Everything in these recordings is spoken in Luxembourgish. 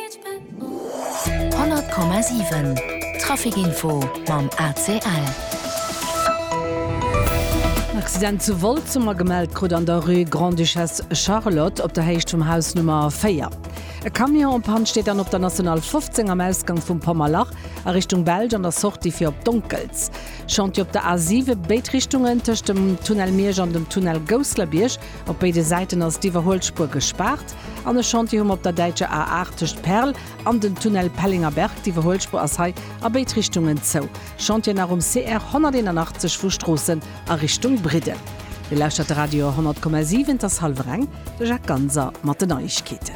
100,7 Traficinfo mam ACL. En Accident zu Wolz hu mer gemellt krut an der Rue Grande-Duchesse Charlotte op der Héicht vum Haus Nummer 4. E Camion en panne steet dann op der National 15 am Ausgang vum Pommerlach a Richtung Belsch an der Sortie fir op Donkels. Chantier op der A7 béid Richtungen tëscht dem Tunnel Miersch an dem Tunnel Gousslerbierg. Op béide Säiten ass d'Iwwerhuelspuer gespaart an e Chantier hu mer op der däitscher A8 tëscht Perl an den Tunnel Pellinger-Berg. D'Iwwerhuelspuer ass hei a béid Richtungen zou. Chantier nach um CR 181 vu Stroossen a Richtung Bridden. Dir lauschtert de Radio 100,7, et ass hallwer eng. De Jacques Ganser mat den Neiegkeeten.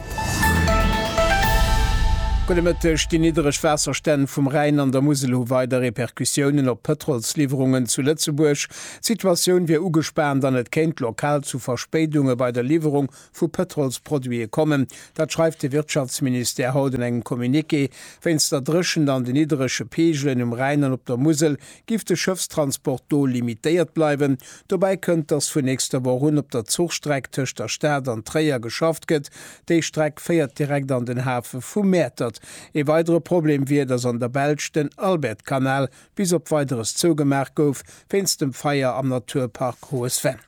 Gudde Mëtteg, Déi niddereg Waasserstänn vum Rhäin an der Musel hu weider Repercussiounen op d'Pëtrolsliwwerungen zu Lëtzebuerg. D'Situatioun wier ugespaant an et kéint lokal zu Verspéidunge bei der Liwwerung vu Pëtrolsproduite kommen. Dat schreift de Wirtschaftsministère haut an engem Communiqué. Wéinst der Dréchent an de nidderege Peegelen um Rhäin an op der Musel giff de Schëffstransport do limitéiert bleiwen. Dobäi kënnt, datt vun nächster Woch un op der Zuchstreck tëscht der Stad an Tréier geschafft gëtt. Déi Streck féiert direkt an den Hafe vu Mäertert. Ee weidere Problem wier, datt an der Belsch den Albertkanal bis op Weideres zougemaach gouf wéinst dem Feier am Naturpark Hohe Sven.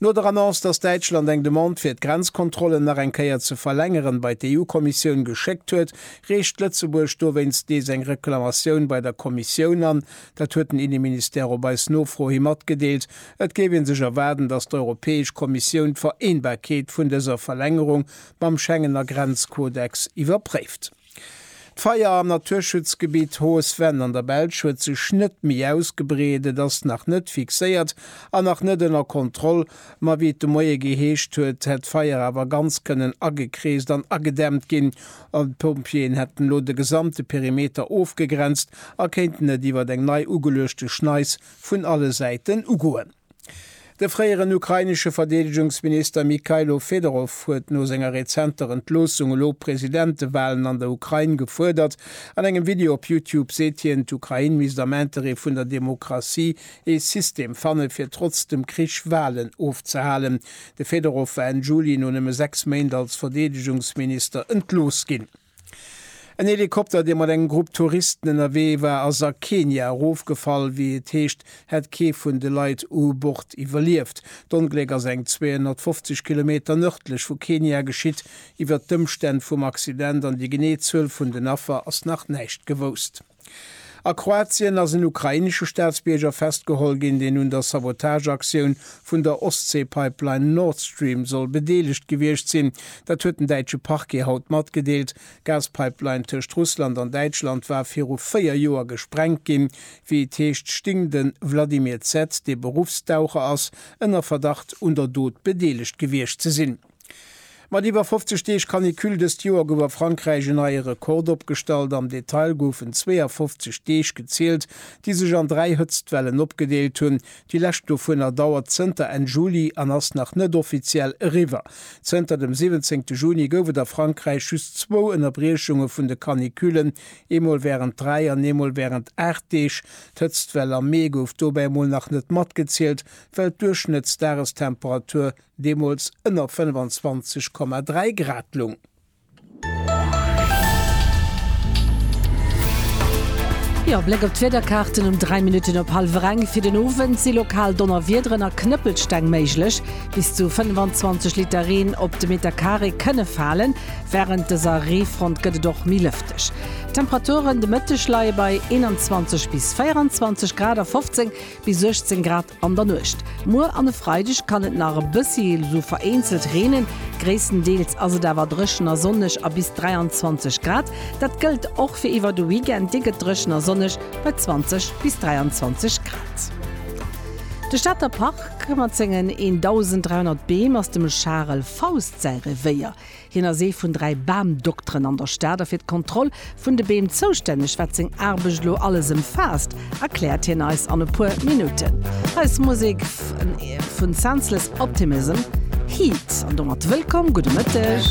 No der Annonce, datt Däitschland eng Demande fir d'Grenzkontrollen nach eng Kéier ze verlängeren bei d'EU-Kommissioun geschéckt huet, reecht Lëtzebuerg dowéinst nees eng Reklamatioun bei der Kommissioun an. Dat huet den Inneministère op eis Nofro hi matgedeelt. Et géif ee sech erwaarden, datt d'Europäesch Kommissioun d'Vereenbarkeet vun dëser Verlängerung mam Schengener Grenzkodex iwwerpréift. D'Feier am Naturschutzgebitt Haut Venne an der Belsch huet sech net méi ausgebreet. Et ass nach net fixéiert an nach net ënner Kontroll. Ma wéi et de Moie geheescht huet, hätt d'Feier awer ganz kënnen agekreest an agedämmt ginn. D'Pompjeeën hätten elo de gesamte Perimeter ofgegrenzt a kéinten et iwwer eng nei ugeluechte Schneis vun alle Säiten ugoen. De fréieren ukrainesche Verdeedegungsminister Mykhailo Fedorov huet no senger rezenter Entloossung elo Presidentewalen an der Ukrain gefuerdert. An engem Video op Youtube seet hien, d'Ukrain misst am Interêt vun der Demokratie ee System fanne fir trotz dem Krich Walen ofzehalen. De Fedorov war Enn Juli no nëmme sechs Méint als Verdeedegungsminister entlooss ginn. En Helikopter, dee mat engem Grupp Touristen ënnerwee war, ass a Kenia erofgefall. Wéi et heescht, hätt kee vun de Leit u Bord iwwerlieft. D'Ongléck ass eng 250 Kilometer nërdlech vu Kenia geschitt. Iwwert d'Ëmstänn vum Accident an déi genee Zuel vun den Affer ass nach näischt gewousst. A Kroatien ass en ukrainesche Staatsbierger festgeholl ginn, deen un der Sabotageaktioun vun der Ostsee-Pipeline Nord Stream soll bedeelegt gewiescht sinn. Dat huet den däitsche Parquet haut matgedeelt. D'Gaspipeline tëscht Russland an Däitschland war viru véier Joer gesprengt ginn. Wéi et heescht, sting de Vladimir Z., dee Beruffstaucher ass, ënner Verdacht un der Dot bedeelegt gewiescht ze sinn. Mat iwwer 50 Deeg Canicule dëst Joer gouf a Frankräich en neie Rekord opgestallt. Am Detail goufen 52 Deeg gezielt, déi sech an dräi Hëtztwellen opgedeelt hunn. Déi lescht dovunner dauert zënter Enn Juli an ass nach net offiziell eriwwer. Zënter dem 17 Juni gouf et a Frankräich just zwou Ënnerbriechunge vun de Canicullen, eemol wärend dräi an eemol wärend aacht Deeg. D'Hëtztwell am Mee gouf dobäi emol nach net matgezielt, well d'Duerchschnëttsdagestemperatur deemools ënner 25,3 Grad lung. E Bléck op d'Wiederkaarten, Um 3 Minutten op hallwer eng fir den Owend si lokal Donnerwiederen a Knëppelsteng méiglech. Bis zu 25 Liter Reen op de Meter Carré kënne falen. Wärend dëser Reefront gëtt et och méi lëfteg. D'Temperaturen de Mëtteg leie bei 21 bis 24 Grad a 15. Bis 18 Grad an der Nuecht. Muer an e Freideg kann et nach e bëssi, esou vereenzelt, reenen. Gréisstendeels ass et awer dréchen a sonneg a bis 23 Grad. Dat gëllt och fir iwwer de Weekend, dee gëtt dréchen a sonneg bei 20 bis 23 Grad. De Stater Park mat sengen 1.300 Beem ass dem Charel Faust säi Revéier. Hien ass ee vun dräi Bamdokteren an der Stad a fir d'Kontroll vun de Beem zoustänneg. Wat seng Aarbecht elo alles ëmfaasst, erkläert hien eis an e puer Minutten. Hei ass Musek vun Senseless Optimism, Heat. An domat wëllkomm, gudde Mëtteg.